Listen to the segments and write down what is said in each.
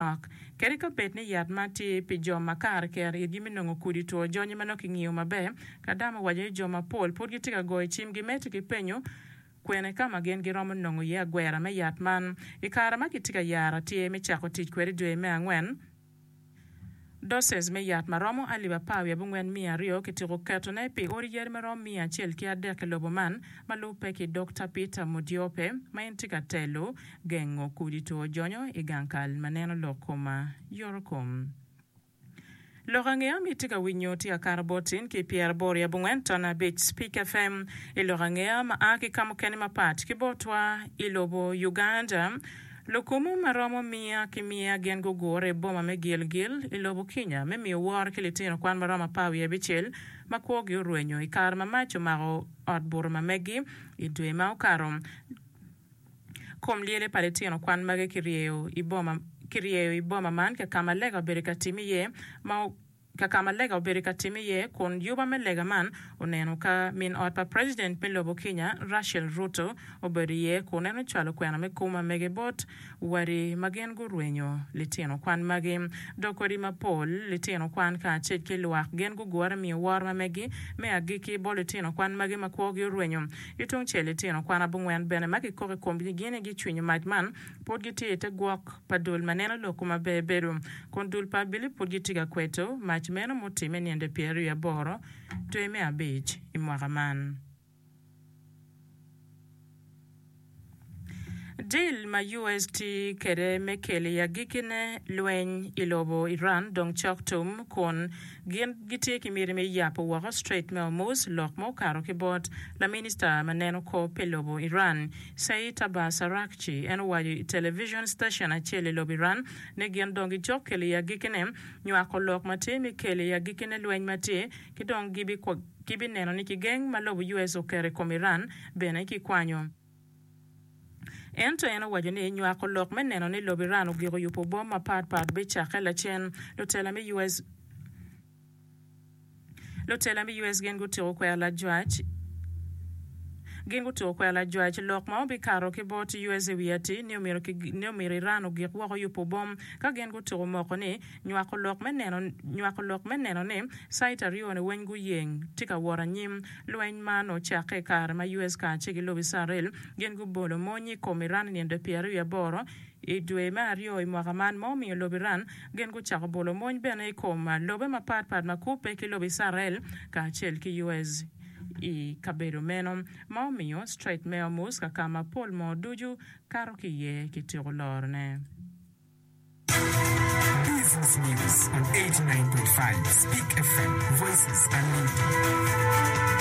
Lok. Kadi ka bed ni yat man tye pi jo makato kero itgi me nongo kudi two jonyi ma nongo kingiyo maber, Kadam owaco ni jo mapol pud gitye ka goyo cimgi medo ki penyo kwene ka ma gin giromo nongo iye agwera me yat man. I kare ma kitye ka yaro atir me cako tic kwede dwe me angwen, Doces me yat ma romo alip apar wiye abongwen miya aryo kityeko ketone pi odi yadi ma romo miya acel ki adek i lobo man, ma lubbe ki Dokta Peter Modiope, ma en tye ka telo gengo kudi two jonyo i gang kal ma neno lok koma yoto kom. Lok ange ma itye ka winyo tye akato bot in ki pyera aboro i abongwen ton abic Speak FM i lok ange ma a ki ka mukene mapat ki botwa i lobo Uganda. Lukomo ma romo miya ki miya gin gugure i boma me Gilgil i lobo Kinya me miyo woro ki litino kwan ma romo apar wiye abicel ma kwogi orwenyo i kare ma mac omako ot buto ma megi i dwe ma okato. Kom lyele pa litino kwan magi kiryeyo i boma man ka ma lega obedo ka timme iye ma ka ka ma lega obedo ka timme iye kun yuba me lega man oneno ka min ot pa president me lobo Kenya Rachel Ruto obedo iye kun en ocwalo kwena me kum amege bot wadi ma gin gurwenyo litino kwan magi dok odi mapol litino kwan kacel ki lwak gin gugure miyo woro ma megi me agikki bot litino kwan magi ma kwogi orwenyo. Yo tungcel litino kwan abongwen bene ma kikok i komgi ni gin aye gicwinyo mac man pud gitye i te gwok pa dul ma neno lok ma ber bedo, kun dul pa abili pud gitye ka kweto mac meno mutimme ninde pyeraryo aboro dwe me abic i mwaka man. Dil ma US tye kwede me kelo i agikkine lweny i lobo Iran dong cok tum, kun gin gitye ki miti me yabo woko Strait me Hormuz lok ma okato ki bot laminista ma neno kop pi lobo Iran. Saeed Abbas Araghchi, en owaco i television station acel i lobo Iran ni gin dong gicok kelo i agikine nywako lok ma tye me kelo i agikine lweny ma tye ki dong gibineno ni kigeng ma lobo US oketo i kom Iran bene kikwanyo. Ento en owaco ni nywako lok me neno ni lobo Iran ogiko yubo bom mapat pat bicakke lacen. Lutela me US. Lutela me US gin gutyeko kwero lajwac gin gutyeko kwero lajwac lok ma obikato ki bot US i wi ati ni omyero ki ni omyero Iran ogik woko yubo bom ka gin gutyeko moko ni nywako lok me neno nywako lok me neno ni site aryo ni weny guyeng tye ka wot anyim. Lweny man ocakke i kare ma US kace ki lobo Icarel gin gubolo mony i kom Iran i nino dwe pyera wiye aboro i dwe me aryo i mwaka man ma omiyo lobo Iran Gin gucako bolo mony bene i kom lobe mapat pat ma kubbe ki lobo Icrael kacel ki US. i kabedo meno, ma omiyo Strait me Hormuz kaka ma pol moo ducu kato ki iye kityeko lorone. Business News on eighty nine point five Speak FM, Voices Unlimited.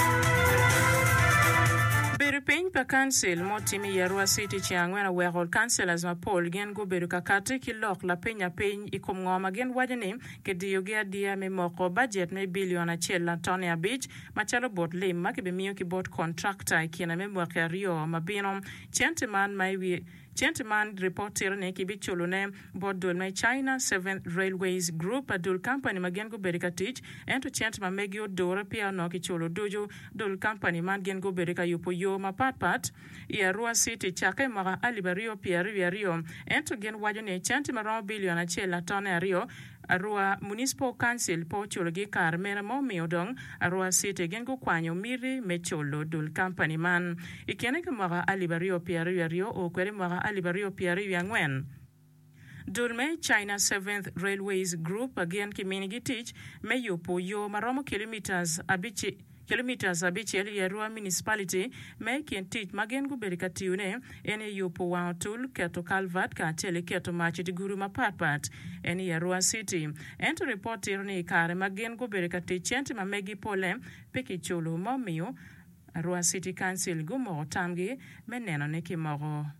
Bedo piny pa Council ma otim i Arua City ceng angwen oweko Councillors mapol gin gubedo ka kati ki lok lapeny apeny i kom ngo ma gin waco ni kidiyogi adiya me moko bajet me bilion acel latone abic macalo bot lim ma kibimiyo ki bot kontrakta i kine me mwaki aryo ma bino. Cente man ma i wiye Cente man ripot tito ni kibiculune bot dul me China Seventh Railways Group, dul kampani ma gin gubedo ka tic, ento cente ma megi odure peya onongo kiculo ducu. Dul kampani man gin gubedo ka yubo yo mapatpat. i Arua city cakke i mwaka alip aryo pye aryo wiye aryo ento gin waco ni centi ma romo billion acel latone aryo Arua Municipal Council pe oculogi i kare mere ma omiyo dong Arua city gin gukwanyo miti me culo dul kampani man i kine ki mwaka alip aryo pye aryo wiye aryo o kwede i mwaka alip aryo pye aryo wiye angwen. Dul me China Seventh Railways Group gin kiminigi tic me yubu yo ma romo kilometres abicel i Arua Municipality ma i kin tic ma gin gubedo ka tiyone en aye yubu wang otul, keto kalvat kacel ki keto mac i diguru mapat pat en i Arua City. Ento ripot tito ni i kare ma gin gubedo ka tic centi ma megi pole pe kiculo ma omiyo Arua City Council gumoko tamgi me nenone ki moko.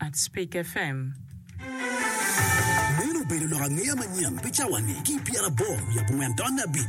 at Speak FM. Meno obedo lok angeya manyen pi cawa ni ki i pyerabor wiye abongwen taun me abic.